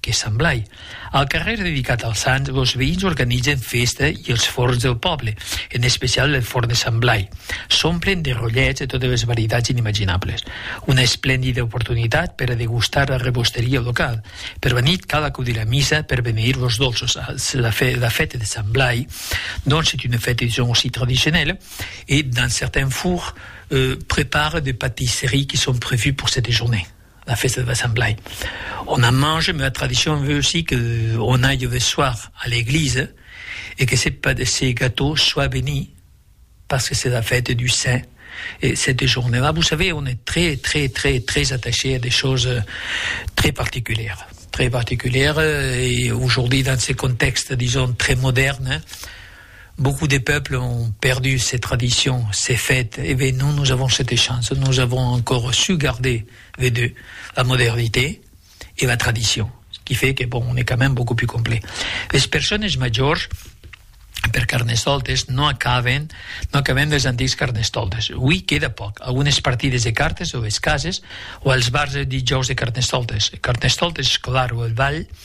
Que semblai. Al carrèr dedicat al sant, los veïns organitzen fèsta i els forns del pòble, en especial el forn de Sant Blai, s'omplen de rollets de totes les varietats inimaginables. Una esplendida oportunitat per a degustar la rebosteria locala. Per la nit cal acudir a missa per beneir los dolços. La fèta de Sant Blai, donc, c'est une fête disons aussi traditionnelle et dans certains fours prepare des patisseries qui sont prévues pour cette journée. la fèsta de Sant Blai. On a mange, mèu tradicion veu si que on aille ve soir a l'eglise e que se pas de se gatò sois beni pas que se la fète du saint e cette journée là vous savez on est très très très très attaché a des choses très particulières très particulières e aujourd'hui dans ce contexte dison très moderne Beaucoup de peuples ont perdu ces traditions, ces fêtes, eh ben nous, nous avons cette chance, nous avons encore su garder ve de la modernité e la tradition, ce qui fait que bon, on est quand même beaucoup plus complet. Les personnes majors, per Carnestoltes, non acaben, non acaben dels antics Carnestoltes. Hui queda poc, algunes partides de cartes o es cases o als bars del dijòus de Carnestoltes. Carnestoltes, Escolar o el Vall,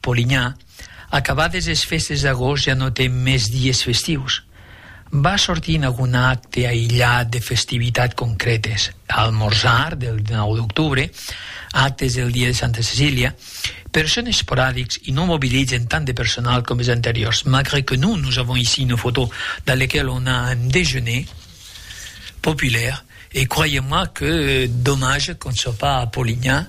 Polinyà, acabades es festes d'agost ja no ten mès dies festius. Vas sortir en agun acte aïllat de festivitat concrètes, almorzar del 19 d'octubre, actes del dia de Santa Cecília, per son esporadics e non mobilizan tant de personal com es anteriors, malgre que non nos avons ici une photo dans lequel on a un déjeuner populaire, e croyez-moi que dommage qu'on ne soit pas à Polinyà,